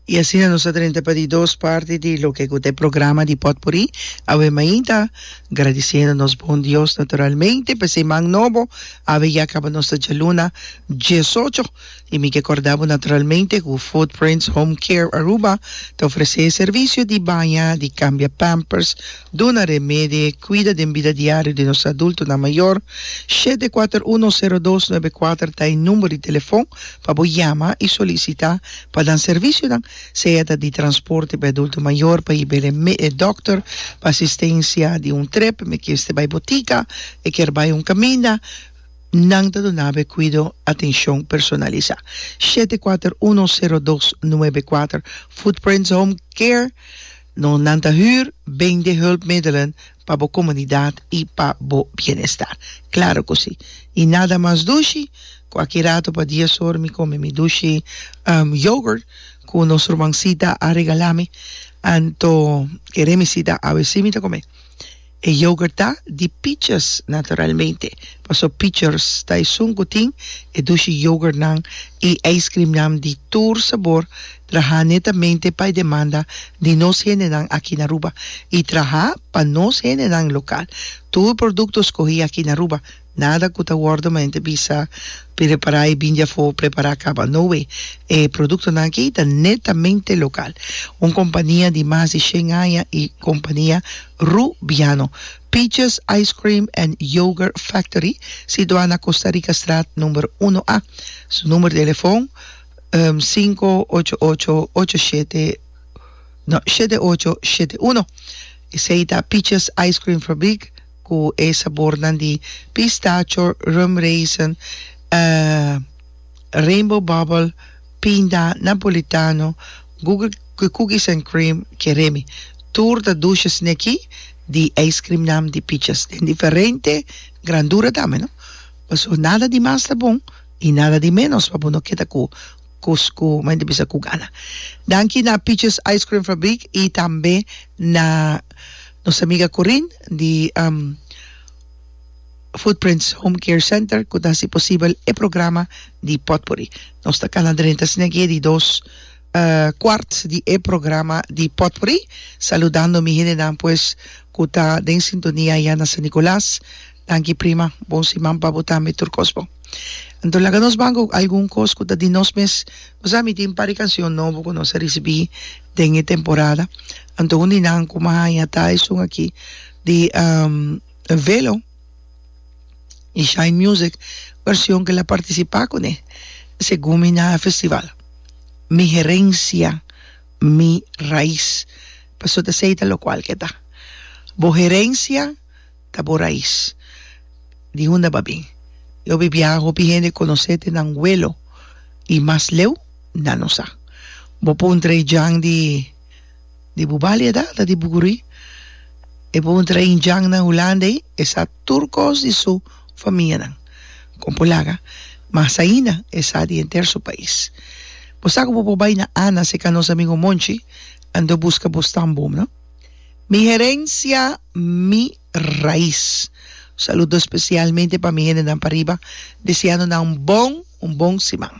Y asina nos a drenta pa di dos parti di loke cu ta e programa di potpuri. Awe mainta agradiciendo nos bon Dios naturalmente pa esei man nobo. Awe ya caba nos ta djaluna diesocho y mi ke corda bo naturalmente cu Footprints Home Care Aruba ta ofrece e servicio di baña, di cambia pampers, Duna remedi e kuida den bida diario di nos adultonan mayor. Shete kuater uno sero dos nuebe kuater ta e number di telefon pa bo yama i solisita pa nan servisionan, sea ta di transporte pa e adulto mayor pa hib'el e dokter, pa asistensia di un trip, mekeste bai botika, e kier bai un kaminda, nan ta dunabo e kuido atenshon personalisa. Shete kuater uno sero dos nuebe kuater Footprints Home Care. No, nan ta hür bende hulpmiddelen pa bo komunidat i pa bo bienestar. Klaro ku si. I nada mas dushi, ku aki rato pa dies or mi kome mi dushi yogurt ku nos rumansita a regala mi, anto ke Remisita a wc mi ta kome. E yoghurt ta di pichers naturalmente, paso pichers ta esun cu tin e dushi yoghurtnan y ijscreamnan di tur sabor traha netamente pa e demanda di nos hendenan aki na Aruba y traha pa nos hendenan local. Tur producto scogi aki na Aruba Nada cu ta wordo mente bisa prepara y bindi afo prepara caba. No way. E productonan aki ta netamente local. Un compania di mas di shen aña y compania Rubiano Peaches Ice Cream and Yogurt Factory situa na Costa Rica Straat number uno A. Su number di telefon sinku ocho ocho ocho shete no shete ocho shete uno. Esey ta Peaches Ice Cream Fabriek. Ku e sabornan di pistacho, rum raisin, rainbow bubble, pinda, napolitano, Google cookies and cream, keremi. Tur ta dushes ne aki di ijskrimnan di pichas den diferente grandura tambe no. Paso nada di mas ta bon i nada di menos pa bo no keda ku. Cusco ma inti bisa cu gana. Danki na Peaches Ice Cream Fabriek y tambe na nos amiga Corin di Footprints Home Care Center cu ta haci posibel e programa di Potpourri. Nos ta cana drenta asina aki e di dos cuart di e programa di Potpourri. Saludando mi hendenan pues cu ta den sintonia ya na San Nicolas. Danki prima, bon siman pa bo tambe tur kos bon. Anto laga nos ban ku algun kos ku ta di nos mes. Bo sa mi tin par di kansion nobo ku nos a risibí den e temporada. Anto un di nan ku mi a haña ta esun aki di Velo di Shine Music version ku el a partisipá kuné segun mi na festival. Mi herencia, mi raiz. Pasobra ta esei ta lokual ku e ta. Bo herencia. ta bo rais? Di hunda ba bin? E hopi biaha hopi hende konosé te nan welo i mas leu nan no sa. Bo puntra e djan di di bu balia da ta di Buguruí? E puntra ein djannan Hulanda ei? E sa tur kos di su famianan. Kon por laga? Mas ainda e sa di henter su pais. Bo sa ku bo por bai na Ana, se Canosa Mingo Monchi, andó buska bo stambom, no? Mi herencia, mi raiz. Un saludo specialmente pa mi hendenan pariba, deseando nan un bon, un bon siman.